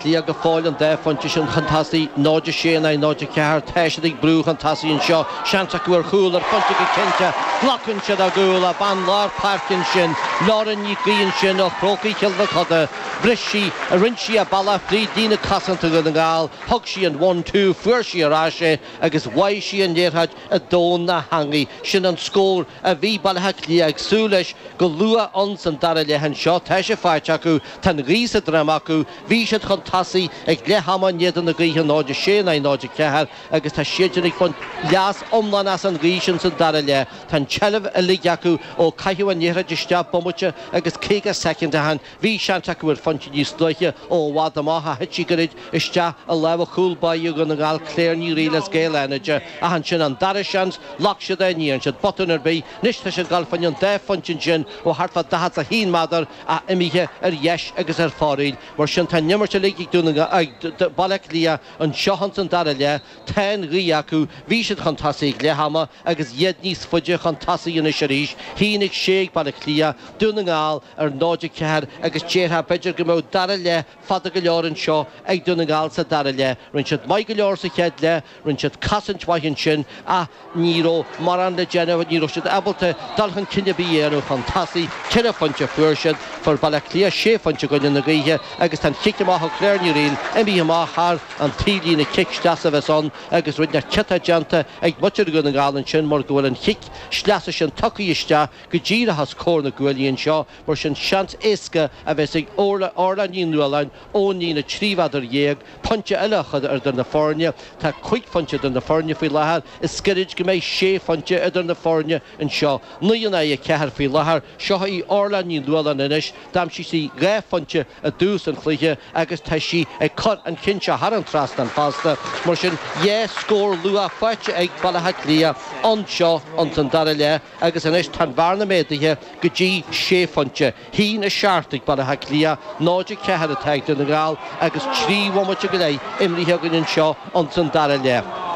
Cliath go fóill an dá phointe sin chun tosaigh, 0-6 in aghaidh 0-4. Tá siad ag brú chun tosaigh anseo. Seans acu ar chúl, ar phointe go cinnte. Glacann siad a gcúl ó bhean lár páirce ansin. Lauren Nic Aoidh ansin ó Chrócaigh Chill Mochuda. Bhris sí, rinne sí a bealach fríd líne cosanta Dhún na nGall, thug sí an one, two, fuair sí ar ais é agus bháigh sí an liathróid i dtóin na heangaí. Sin an scór a bhí Baile Átha Cliath ag súil leis go luath ins an dara leath anseo. Tá sé faighte acu. Tá an ghaoth sa droim acu, bhí siad chun tosaigh ag leath ama in éadan na gaoithe, 0, 6 in aghaidh 0, 4, agus tá siadsan ag baint leas iomlán as an ghaoth sin sa dara leath. Tá an tseilbh uilig acu ó caitheadh an liathróid isteach bomaite agus 50 soicind ó shin, bhí seans acu ar phointe níos luaithe ó i bhfad amach ach thit sí gairid isteach i lámha chúl báire Dhún na nGall Claire Ní Fhríl as Gaeil Fhánada ach ansin an dara seans, ghlac siad é, ní dhearn siad botún ar bith, anois tá siad ag dul faoin an dá phointe ansin ó thart fá 41 méadar. Ach imithe ar dheis agus ar fóraoil, mar sin tá an imirt uilig ag Dún na Baile Átha Cliath anseo ins an dara leath. Tá an ghaoth acu, bhí siad chun tosaigh ag leath ama agus iad níos faide chun tosaigh anois arís. 1-6 ag Baile Átha Cliath, Dún na nGall ar 0-4 agus déarfá b'fhéidir go mbeadh dara leath fada go leor anseo ag Dún na nGall sa dara leath. Rinne siad maith go leor sa chéad leath. Rinne siad cosaint mhaith ansin ach ní raibh mórán le déanamh, ní raibh siad ábalta dul chun cinn ar bith a dhéanamh chun tosaigh. Ceithre phointe a fuair siad, fuair Baile Átha Cliath sé phointe i gcoinne na gaoithe agus tá an chic amach ó Claire Ní Fhríl imithe amach thar an taobhlíne, cic sleasa a bheas ann agus ruainne ciotach déanta ag muintir Dhún na nGall ansin mar go bhfuil an chic sleasa sin tugtha isteach go díreach os comhair na gcuaillí anseo mar sin seans éasca a bheas ag Orla Ní Nualláin Ón líne trí mhéadar déag, pointe eile a chur idir na foirne, tá cúig phointe idir na foirne faoi láthair, is gairid go mbeidh sé phointe idir na foirne anseo. Naoi in aghaidh a ceathair faoi láthair, seo í Orlagh Ní Nualláin anois, d'aimsigh sí dhá phointe i dtús an chluiche agus tá sí ag cur an chinn seo thar an trasnán fosta, mar sin dhá scór luath faighte ag Baile Átha Cliath anseo ins an dara leath agus anois tá an bhearna méadaithe go dtí sé phointe. 1, 7 ag Baile Átha Cliath 0, 4 atá ag Dún na nGall agus trí bhomaite go leith imrithe againn anseo ins an dara leath.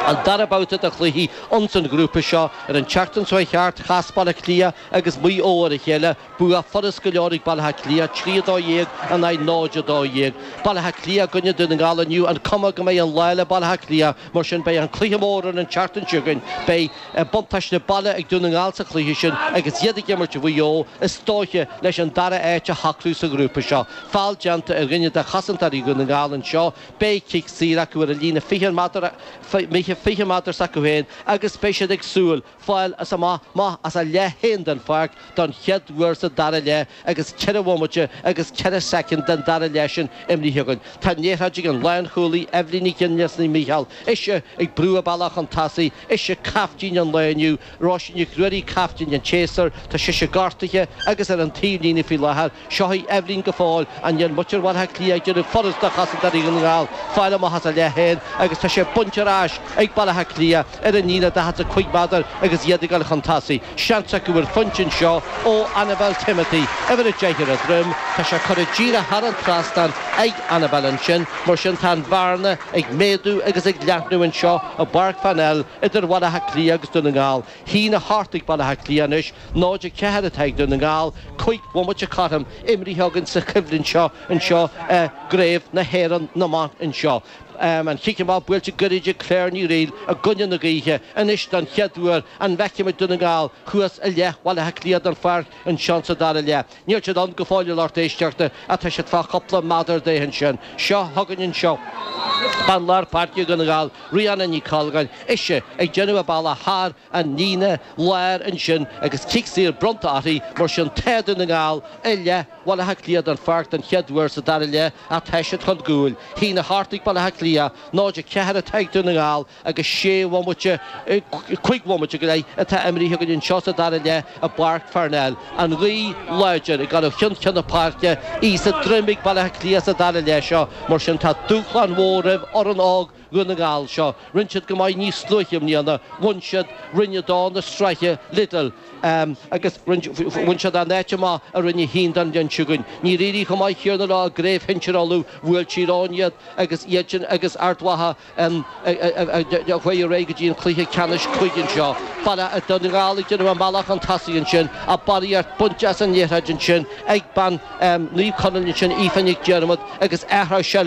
An dara babhta de chluichí ins an ghrúpa seo. Ar an tseachtain seo a chuaigh thart chas Baile Átha Cliath agus Maigh Eo ar a chéile. Bua furast go leor ag Baile Átha Cliath, 3, 12 in aghaidh 0, 12. Baile Átha Cliath i gcoinne Dún na nGall inniu. An chuma go mbeidh an lá le Baile Átha Cliath? Mar sin, beidh an cluiche mór ar an tseachtain seo chugainn. Beidh buntáiste baile ag Dún na nGall sa chluiche sin agus iad ag imirt Mhaigh Eo, is dóiche, leis an dara áit a shocrú sa ghrúpa seo. Feall déanta ar dhuine de chosantóirí Dhún na nGall anseo, beidh cic saor acu ar an líne 20 méadar, 20 méadar s'acu féin, agus beidh siad ag súil, fáil as amach amach as a leath féin den pháirc don chéad uair sa dara leath agus ceithre bhomaite agus ceithre soicind den dara leath sin imithe againn. Tá an liathróid ag an lánchúlaí Eibhlín Nic Fhionnaile as Naomh Mícheál, ise ag brú a bealach chun tosaigh, ise caiftín an lae inniu, Róisín Nic Ruairí caiftín an tséasúir, tá sise gortaithe agus ar an taobhlíne faoi láthair, Sháith Eibhlín go fóill. Níl muintir Bhaile Átha Cliath ag déanamh furast do chosantóirí Dhún na nGall fáil amach as a leith féin agus tá sé bainte ar ais ag Baile Átha Cliath ar an líne daichead a cúig méadar agus iad ag dul chun tosaigh. Seans acu ar phointe anseo ó Annabel Timothy, uimhir 10 ar a droim. Tá sé curtha díreach thar an trasnán ag Annabel ansin, mar sin tá an bhearna ag méadú agus ag leathnú anseo i bPáirc Pharnell idir Bhaile Átha Cliath agus Dún na nGall. 1-8 ag Baile Átha Cliath anois 0-4 atá ag Dún na nGall, cúig bhomaite cothrom imithe againn sa choimhlint seo anseo i gCraobh na hÉireann na mban anseo. An cic amach buailte goirid ag Claire Ní Fhrighil i gcoinne na gaoithe anois don chéad uair, an bhfeicfimid Dún na nGall thuas i leith Bhaile Átha Cliath den pháirc anseo sa dara leath? Níl siad ann go fóill a lucht éisteachta ach tá siad fá chúpla méadar de ansin. Seo chugainn anseo bean lár páirce Dhún na nGall Riana Nic Colgáin, ise ag déanamh a bealach thar an líne láir ansin agus cic saor bronnta uirthi, mar sin tá Dún na nGall i leith Bhaile Átha Cliath den pháirc don chéad uair sa dara leath ach tá siad chun gcúil. 1-8 ag Baile Átha Cliath, 0-4 atá ag Dún na nGall, agus sé bhomaite, cúig bhomaite go leith atá imithe againn anseo sa dara leath i bPáirc Pharnell. An ghaoth láidir ag dul ó cheann ceann na páirce, í sa droim ag Baile Átha Cliath sa dara leath seo, mar sin tá dúshlán mhór roimh fhoireann óg Dhún na nGall seo. Rinne siad go maith níos luaithe i mbliana, bhain siad Roinn a dó na sraithe Lidl, agus bhain siad an áit amach i Roinn a haon don bhliain seo chugainn. Níor éirigh chomh maith céanna leo i gcraobh shinsir Uladh, bhuail Tír Eoghain iad agus iadsan agus Ard Mhacha, a chuaigh ar aghaidh go dtí an cluiche ceannais cúige anseo. Baile Átha Dún na nGall ag déanamh a mbealach chun tosaigh ansin, a barraíocht bainte as an liathróid ansin ag bean Naomh Conaill ansin, Aoife Nic Diarmada, agus athrú seilbh